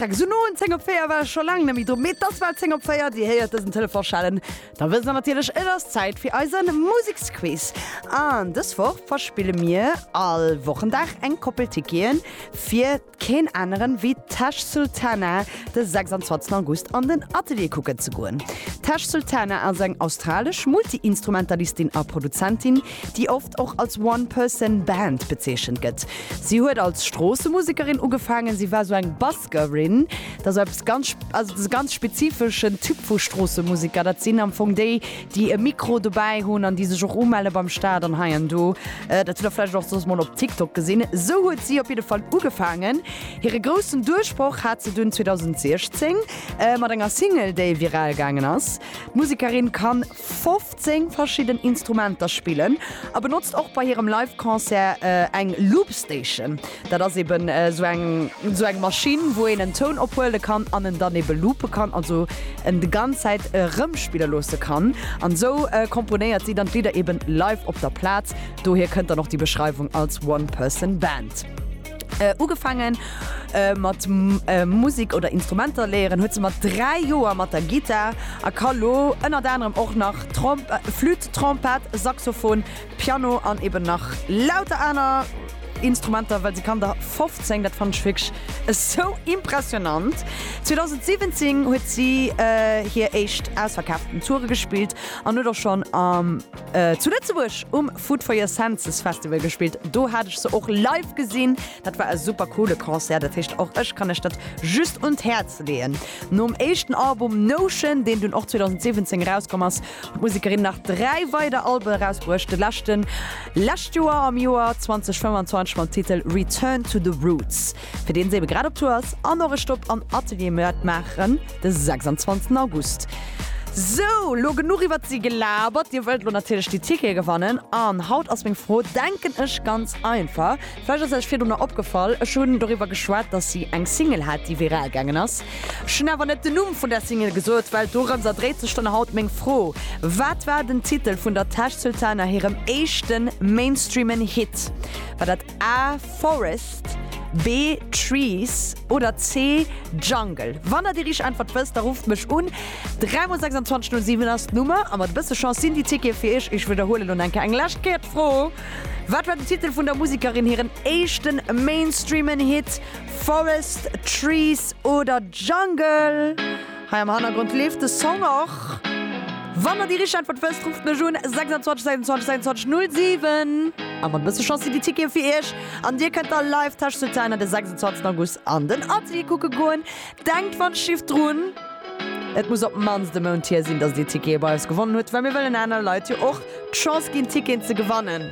Freckes un noen 10 op 4 war scho laang net méi dru, mee dass war 10 op 4, Dir héiert dësen Telefon schellen, da wësst Der natierlech, et ass Zäit fir eisen Museksquiz. An dës Woch verspille mir all Wochendag eng Koppel Ticketen fir keen aneren ewéi Tash Sultana de 26 August an den Atelier kucken ze goen. D'Tash Sultana ass eng australesch Multi-Instrumentalistin a Produzentin, déi oft och als One Person Band bezeechent gëtt. Si huet als Stroossemusekerin ugefaangen, si war sou eng Buskerin, dat ass eppes ganz, also dat ass e ganz spezifeschen Typ vu Stroossemuseker, dat sinn am Fong déi, déi e Mikro dobäi hunn an déi sech och umelle beim Staat an hei an do. Dat hutt Der vläicht och soss mol op TikTok gesinn. Sou huet si op jidde Fall ugefaangen. Hire groussen Duerchbroch hat se dunn 2016 mat enger Single, déi viral gaangen ass. D'Musekerin kann 15 verschidden Instrumenter spillen a benotzt och bei hirem Live Concert eng Loop Station. Dat ass eben sou eng sou eng Maschinn wou een en Toun ophuele kann an en dann ebe loope kann, also en de ganz Zäit erëmspille loosse kann. An esou komponéiert si dann d'Lidder eben live op der Plaz, dohier kënnt dann och déi Beschreiwung als One Person Band. Ugefaangen mat Musek oder Instrumenter léieren huet se mat 3 Joer mat der Gittar a ka lo ënnert anerem och nach Flütt, Trompett, Saxophon, Piano an eben nach lauter aner Instrumenter, well se kann der 15. Dat fannen ech wierklech esou impressionant. 2017 huet si hir éischt ausverkaaften Toure gespillt an huet och schonn zu Lëtzebuerg um. Food for your Senses Festival gespillt. Do hat ech se och live gesinn. Dat war e super coole Concert. Dat heescht och ech kann lech dat just un d'Häerz leeën. Nom éischten Album Notion, deen dunn och 2017 erauskomm ass, huet d'Musekerin nach dräi weider Alben erausbruecht. De leschten lescht Joer am Joer 2025 mam Titel Return to the Roots. fir deen se ebe grad op Tour ass an och e Stopp am Atelier Mörd maachen de 26 August. Sou, lo genuch iwwert si gelabert. Dir wëllt lo natierlech déi Tickete gewannen an haut ass meng Fro, denken ech, ganz einfach. Vläicht ass Iech virdrunner opgefall, ech hunn doriwwer geschwat, dass si eng Single hat, déi viral gaangen ass. Ech hunn awer net den Numm vun där Single gesot, well dorëmser dréit sech dann haut meng Fro, Wat war den Titel vun der Tash Sultana hirem éischte mainstreamen Hit? War dat. A, Forest, B, Trees oder C, Jungle? Wann der déi richteg Äntwert wësst, da rufft mech un. 3 mol 26 no 7 ass d'Nummer a mat e bësse Chance sinn déi Tickete fir iech. Ech widderhuelen elo enker eng lescht Kéier d'Fro, Wat war den Titel vun der Musekerin hiren éischte mainstreamen Hit? Forest, Trees oder Jungle? Hei am Hannergrond leeft de Song och. Wann der déi richteg Äntwert wësst, rufft mech un, 26 26 26 07. A mat e bësse Chance sinn déi Tickete fir iech an dir kënnt da live Tesch zu Zähner de 26 August an den Atelier kucke goen. Denkt wann d'Schiff drun, et muss op d'mannst e Mount hier sinn, dass dir Tickete bei eis gewonnen hutt, well mir wëllen anere Leit jo och d'Chance ginn, Ticketen ze gewannen.